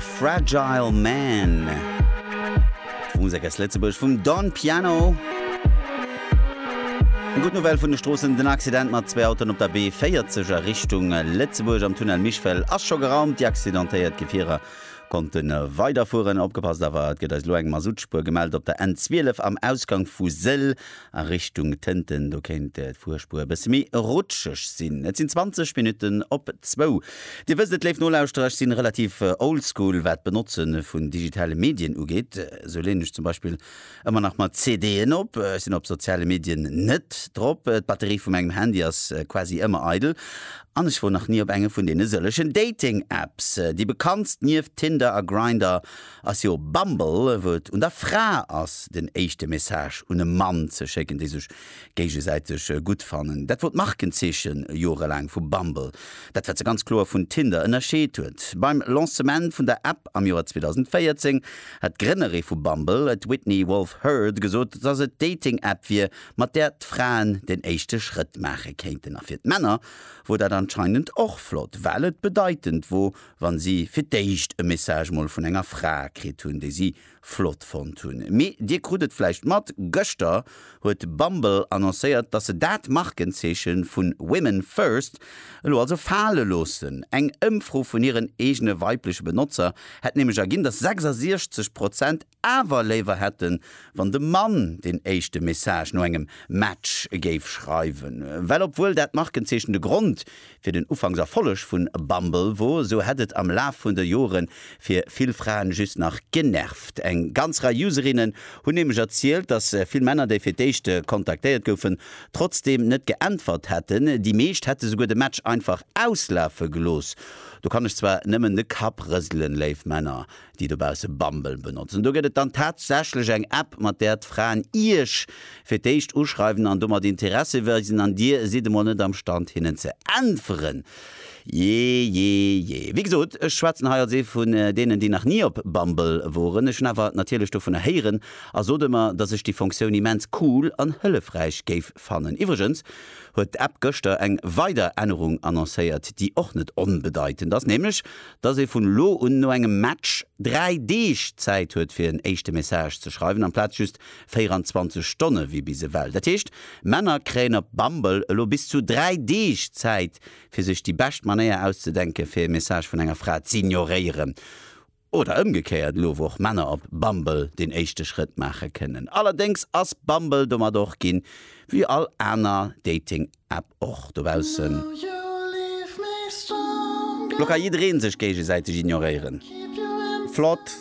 Fragile Man. D'Musek aus Lëtzebuerg vum Don Piano. Eng gutt Nouvelle vun de Stroossen, Den Accident mat zwee Autoen op der B40 a Richtung Lëtzebuerg am Tunnel Michfell ass scho geraumt. Déi accidentéiert Gefierer konnte weiderfueren. Opgepasst awer, et gëtt eis elo eng Masuttspuer gemellt op der N12 am Ausgank vu Sëll a Richtung Tënten. Do kéint d'Fuerspuer e bësse méi rutscheg sinn. Et sinn 20 Minutten op zwou. Dir wësst et, léif Nolauschterer, ech sinn relativ old school wat d'Benotzen vun digitale Medien ugeet. Sou leeën ech zum Beispill ëmmer nach mat CD'en op. Ech sinn op soziale Medien net drop. D'Batterie vu mengem Handy ass quasi ëmmer eidel. An ech wor nach ni op enge vun deene sëllegen Dating Apps. Déi bekanntst nieft Tinder a Grindr ass jo Bumble, wou et un der Fra ass den éischte Message un e Mann ze schécken, dee sech Géigesäiteg gutt fannen, dat wor d'Markenzeechen jorelaang vu Bumble, dat wat se ganz kloer vun Tinder ënnerscheet huet. Beim Lancement vun der App am Joer 2014 hat d'Grënnere vu Bumble, d'Whitney Wolfe Herd, gesot, dass et d'Dating-App wier, mat där d'Fraen den éischte Schrëtt maache kéinten. A fir d'Männer wor dat anscheinend och flott, well et bedeitend wor, wa si fir d'éischt e Message mol vun enger Fra kritt hunn, déi si flott fonnt hunn. Mee dir krut et vläicht mat, gëschter huet Bumble annoncéiert, dass se dat Markenzeeche vu Women First elo also fale loossen. Eng Ëmfro vun hiren eegene weibleche Benotzer hätt nämlech erginn, dass 66 Prozent awer léiwer hätten, wann de Mann den éischte Message no engem Match géif schreiwen. Well obwuel dat Markenzeechen de Grond Fir den Ufanks Erfolleg vun Bumble wor, esou hätt et am Laf vun de Joren fir vill Fraen just nach genervt. Eng ganz Rei Userinnen hunn nämlech erzielt, dass vill Männer, déi fir d'éischt kontaktéiert goufen, trotzdeem net geäntwert hätten. Déi meescht hätte souguer de Match einfach auslafe gelooss. Do kann ech zwar nëmmen de Kapp rëselen, léif Männer, déi dobausse Bumble benotzen. Do gëtt et dann tatsächlech eng App, mat där d'Fraen Iech fir d'éischt uschreiwen an domat Interesse weisen an Dir sidd emol net am Stand hinnen ze äntweren. Jejeje. Wéi gesot, ech schwätzen hei als ee vun deenen, déi nach ni op Bumble woren. Ech hunn awer natierlech dovunner héieren a sot ëmmer, dass ech déi Funktioun immens cool an hëllefräich géif fannen. Iwwregens huet d'App gëschter eng weider Ännerung annoncéiert, déi och net onbedeitend ass, nämlech dass ee vun elo un no engem Match dräi Deeg Zäit huet fir en éischte Message ze schreiwen amplaz just 24 Stonne wéi bis ewell. Dat heescht, Männer kréien op Bumble elo bis zu dräi Deeg Zäit fir sech déi bescht Manéier auszedenke fir ee Message vun enger Fra z'ignoréieren. Oder ëmgekéiert elo wou och Männer op Bumble den éischte Schrëtt maache kënnen. Allerdéngs ass Bumble domat och ginn, wéi all aner Dating App och dobaussen. Lo ka jiddereen sech géigesäiteg ignoréieren. Flott!